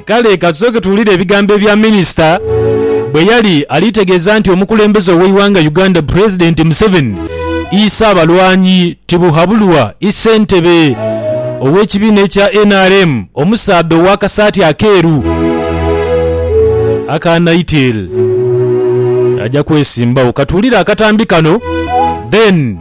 Kale ka tusooke tuwulire ebigambo ebya minisita bwe yali ali tegeeza nti omukulembeze ow'eighanga Uganda Pulezidenti Museveni iise abalwanyi tibuhabulwa i Ssentebe ow'ekibiina ekya nrm omusaadha ow'akasaati akeeru aka Nightel aja kwesimbawo. Ka tuwulire akatambi kano then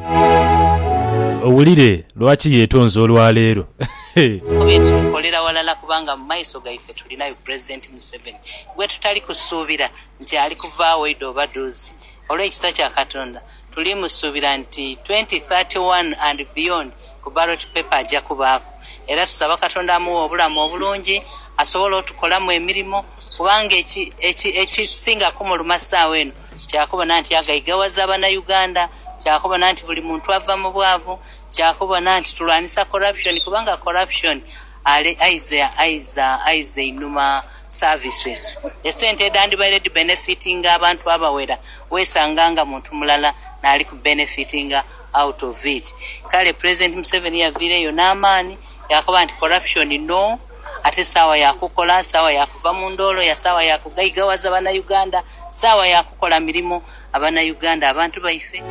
owulire lwaki yetonze olwaleero. He! Kuba eti tukolera walala kubanga mu maiso gaife tulinayo Pulezidenti Museveni gwe tutali kusuubira nti ali kuvaagho idhooba dhoozi. Olw'ekisa kya Katonda tuli musuubira nti twenty thirty one and beyond ku ballot paper aja kubaaku era tusaba Katonda amughe obulamu obulungi asobole otukolamu emirimo kubanga ekisinga kumuluma saawa eno Kyakubona nti agaigawaza banauganda, kyakubona nti buli muntu ava mubwavu, kyakubona nti tulwanisa corruption kubanga corruption ale aiza aiza aiza einhuma services. Esente edhandibaire dhi benefitinga abantu abawera wesanga nga muntu mulala naali ku benefitinga out of it. Kale president Museveni yaviireyo n'amaani yakoba nti corruption no. Ate saawa ya kukola, saawa ya kuva mu ndoolo ya saawa ya kugaigaghaza Banauganda, saawa ya kukola mirimo Abanauganda abantu baife.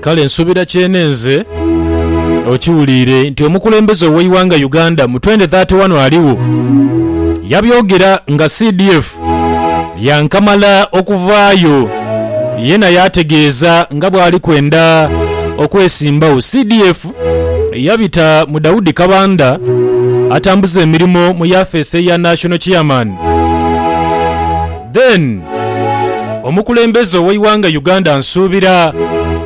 Kale nsuubira kyenenze okiwuliire nti omukulembeze ow'eighanga Uganda mu twende thirty wano aligho yabyogera nga CDF yankamala okuvaayo yena yaategeeza nga bwali kwenda okwesimbagho. CDF. yabita mu Daudi Kabanda atambuza emirimo mu yafeesi eya National Chairman. Then omukulembeze ow'eighanga Uganda Nsuubira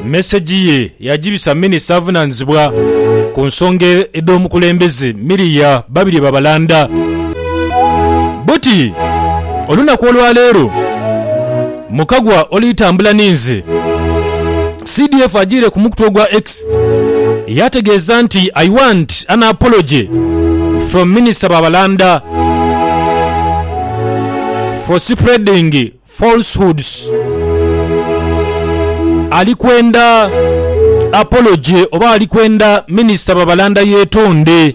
mesegi ye yagibisa minisita avunaanizibwa ku nsonga edh'omukulembeze Miria Babirye Babalanda. Buti olunaku olwaleero, Mukagwa oli tambula ni nze. CDF ajiire ku mukutu ogwa X yaategeeza nti, I want an apology from Minisita Babalanda for spreading falsehoods. Ali kwenda apology oba ali kwenda Minisita Babalanda yeetonde?